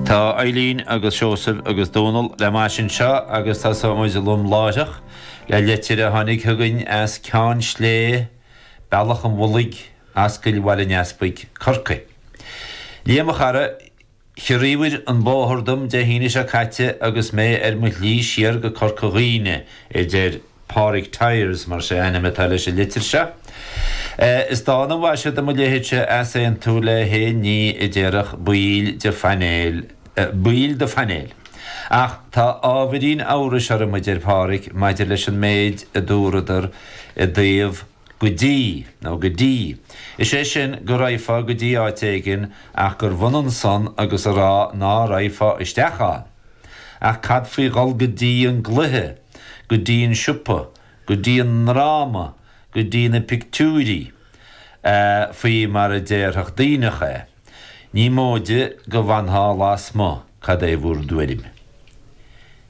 Tá Eilín agus Seosamh agus Dónal le m'ais anseo agus tosóidh muid lom láithreach le leitir a tháinig chugainn as Ceann Slé, Bealach an Mhullaigh, Ascaill Bhaile an Easpaig, Corcaigh. Liam, a chara, chiorraíobhair an bóthar dom Dé hAoine seo caite agus mé ar mo shlí siar go Corca Dhuibhne, a deir. Pádraig Tyers, mar is é ainm atá leis an litir seo. Is dána an mhaise do mo leithéidse easaontú le haon ní a déarfadh baill de phainéal, baill do phainéil. Ach tá ábhairín amhrais orm, a deir Pádraig, maidir leis an méid a dúradar i dtaobh go dtí, nó go dtí. Is é sin, go raghfá go dtí áit éigin ach gurbh ionann san agus a rá ná raghfá isteach ann. Ach cad faoi dhul go dtí an gcluiche? go dtí an siopa, go dtí an ndráma, go dtí na pictiúirí, faoi mar a déarfadh Duibhneach é. Ní móide go bhfanfá lasmuigh, cad é bhur dtuairim?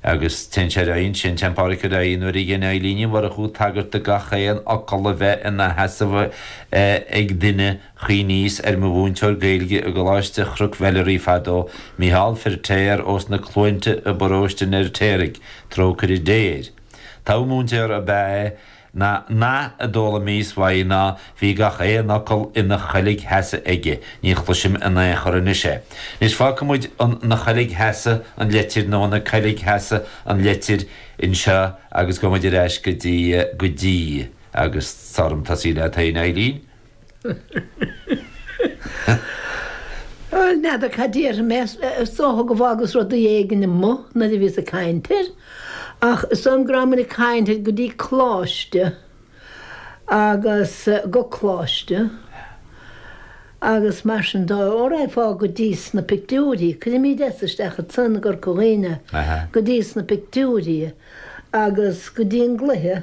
Agus téann sé ar aghaidh ansin, téann Pádraic ar aghaidh, nuair a dhein Eilín Ní Mhurchú tagairt do gach aon fhocal a bheith ina sheasamh ag duine, Chuimhníos ar mo mhúinteoir Gaeilge i gColáiste Chnoc Mheilearaí fadó, Mícheál Feirtéar ós na Cluainte i bParóiste an Fheirtéaraigh, trócaire Dé air. Togha múinteora ab ea é. An nath a d'fhoghlaimíos uaidh ná, bhí gach aon fhocal ina choilgsheasamh aige, ní chloisim i n-aon chor anois é. Anois fágfaidh muid ina choilgsheasamh an leitir, nó ina coilgsheasamh an leitir, anseo agus gabhfaidh muid ar ais go dtí, go dtí. agus is fearr dhom tosaí leat fhéin, a Eilín. N'fheadar cad dúirt mé, is dócha gur fhágas rudaí éigin amuigh nuair a bhíos ag caint air, ach is dóigh liom go rabhamair ag caint ar go dtí Coláiste agus go Coláiste agus mar sin dóibh, ó raghfá go dtí sna pictiúirí, cuirimid S isteach ansan i gCorca Dhuibhne, go dtí sna pictiúirí agus go dtí an gcluiche.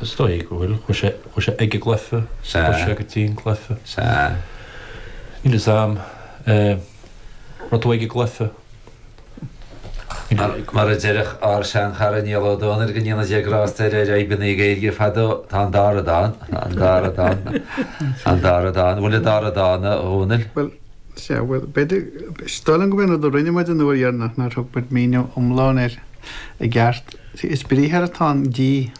Is dóigh go bhfuil. Chuaigh sé, chuaigh sé ag an gcluiche. Sea. Chuaigh sé go dtí an cluiche. Sea. Níl fhios a'm. Eh, rud a bheidh ag an gcluiche. Mar, mar a déarfadh ár seanchara Niall Ó Dónaill go ndéana Dia grásta air ar fhadhbanna na Gaeilge fadó, tá an dara dóigh ann. An bhfuil an dara dóigh ann, a Dhónaill? Bhuel, sea, bhuel, b'fhéidir, is dóigh liom go mb'é an rud a rinne muid an uair dheireanach nár thug muid míniú iomlán air i gceart. Sea, is briathar atá in dtí.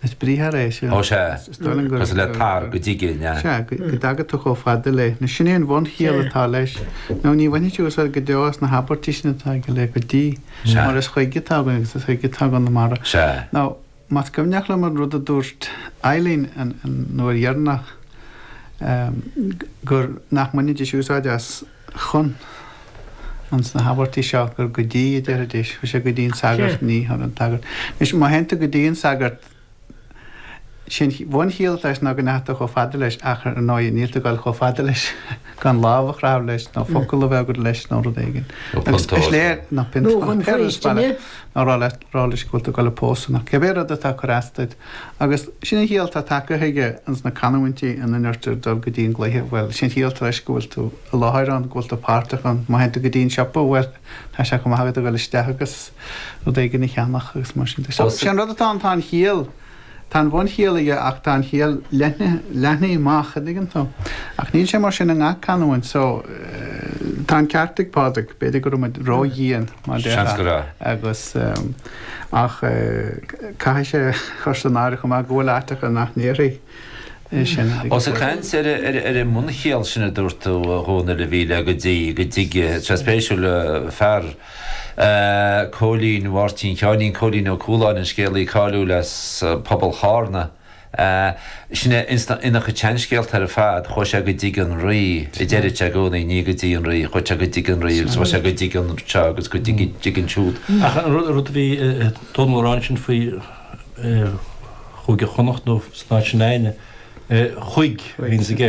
Is briathar é sin. Ó sea. Cosúil le tar, go dtigidh, an ea? Sea, go dtaga tú chomh fada léi. Nó sin é an bhunchiall atá leis. Nó ní bhainfidís úsáid go deo as na habairtí sin atá aige le go dtí. Sea. Mar is chuig atá againn agus is chuig atá againn na mara. Sea. Nó, más cuimhneach liom an rud a dúirt Eileen an uair dheireanach, nach mbainfidís úsáid as, chun ins na habairtí seo gur 'go dtí' a déarfaidís. Chuir sé 'go dtí an sagart', Cé. ní, chuir an sagart. Anois, má théann tú go dtí an sagart, sin, an bhunchiall atá leis ná go ndeachaigh tú chomh fada leis ach, ar ndóigh, níl tú ag dul chomh fada leis gan lámh a chroitheadh leis nó focal a bheith agat leis nó rud éigin. Nó Agus is piontóir. léir, nó Nó piontóir, chun péire faoistine. sparán, nó rá leis, rá leis go bhfuil tú ag dul ag pósadh nó cibé rud atá ag cur as duit. Agus sin an chiall atá tagtha aige ins na canúintí ina ndeirtear dul go dtí an gcluiche, bhuel, sin an chiall atá leis go bhfuil tú i láthair ann, go bhfuil tú páirteach ann. Má théann tú go dtí an siopa, bhuel, tá sé chomh maith agat a dhul isteach agus rud éigin a cheannach agus mar sin de. So, sé an rud atá ann, tá an chiall, tá an bhunchiall aige ach tá an chiall leathnaithe, leathnaithe amach, an dtuigeann tú. Ach níl sé mar sin i ngach canúint. So, tá an ceart ag Pádraig, b'fhéidir go raibh muid ró-dhian. mar deir Seans go Aodh. raibh. Agus ach caithfidh sé chur san áireamh chomh maith go bhfuil áiteacha nach ndéarfaí é sin. Ós ag caint ar an mbunchiall sin a dúirt tú, a Dhónaill, i dtaobh, go dtí go dtig tá sé spéisiúil leabhar Cóilín Mháirtín Sheáinín Cóilín Ó Cúláin, an scéalaí cáiliúil as pobal Chárna. Sin é insna seanscéalta ar fad, chuaigh sé go dtig an rí, a deireadh sé i gcónaí, ní go dtí an rí, chuaigh sé go dtig an rí agus chuaigh sé go dtig anseo agus go dtig ansiúd. Ach an rud a bhí Dónall a rá ansin faoi Chúige Chonnacht nó san áit sin, chuig a bhí ins an gceist.